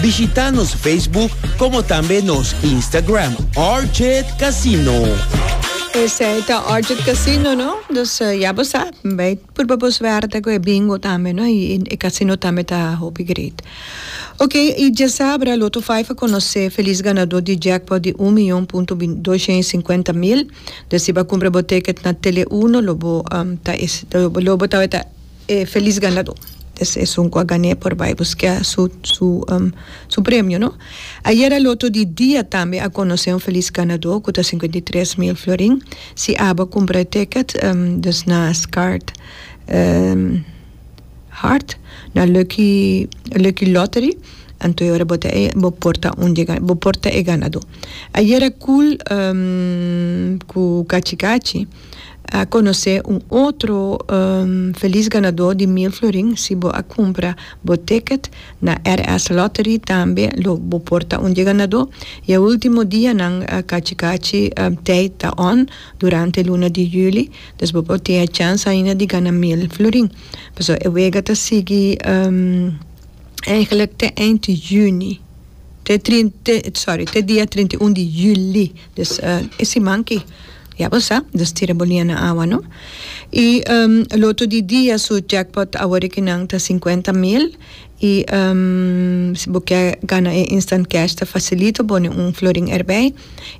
Bishita nos Facebook como tambe nos Instagram Orchid Casino. Esei ta Orchid Casino, no? Dus uh, ya bo sa, bij purba bo suerte ku e bingo tambe, no? I e casino tambe ta hopi great. Ok, i dje sabra Lotto 5 a conoce feliz ganador di jackpot di 1 miljoen punto 250 mil. Dus si ba cumpra bo ticket na Tele 1, lo bo um, ta, lo bo ta, ta E felis ganadó des esun cu a gané por bay busqué su premio, no? Ayer a loto di dia tambe a conocé un felis ganadó cu ta cincuenta i tres mil florin si aba cumpra e ticket des na Scaart Hart na Lucky Lucky Lottery anto e ora bo ta bo por ta un di e bo por ta e ganadó. Ayer a cool cu cachi cachi. a conoce un otro feliz ganador di mil florin si bo a cumpra bo ticket na RS Lottery tambe lo bo por ta un di e ganador y e ultimo dianan cachi cachi tijd ta on durante luna di juli dus bo por tin e chance ainda di gana mil florin pasobra e wega ta sigui eigenlijk te eind di juni te trinta sorry te dia trinta y un di juli. Dus e siman ki, ya bo sa, nos tira bolia na awa no. I lotu di dia su jackpot a worde ki nan ta sinkuenta mil i si bo ke gana e instant cash ta fasilito bo ne un florin erbij.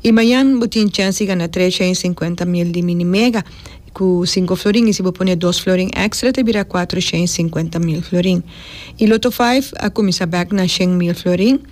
I mayan bo tin chèns di gana tresha i sinkuenta mil di mini mega ku sinku florin i si bo pone dos florin èkstra ta bira kuatrusha i sinkuenta mil florin. I loto five a kuminsá bèk na shen mil florin.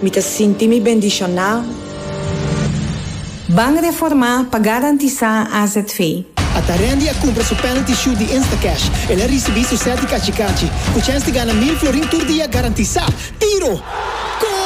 Mi ta sinti mi bendishoná. Bank Reformá pa garantisá azv. Atarendi a kumpra su penalty shoot di Instacash. El a risibí su sèt di kachi kachi. Kuchenski gana mil florin tur dia garantisá. Tiro! Goal!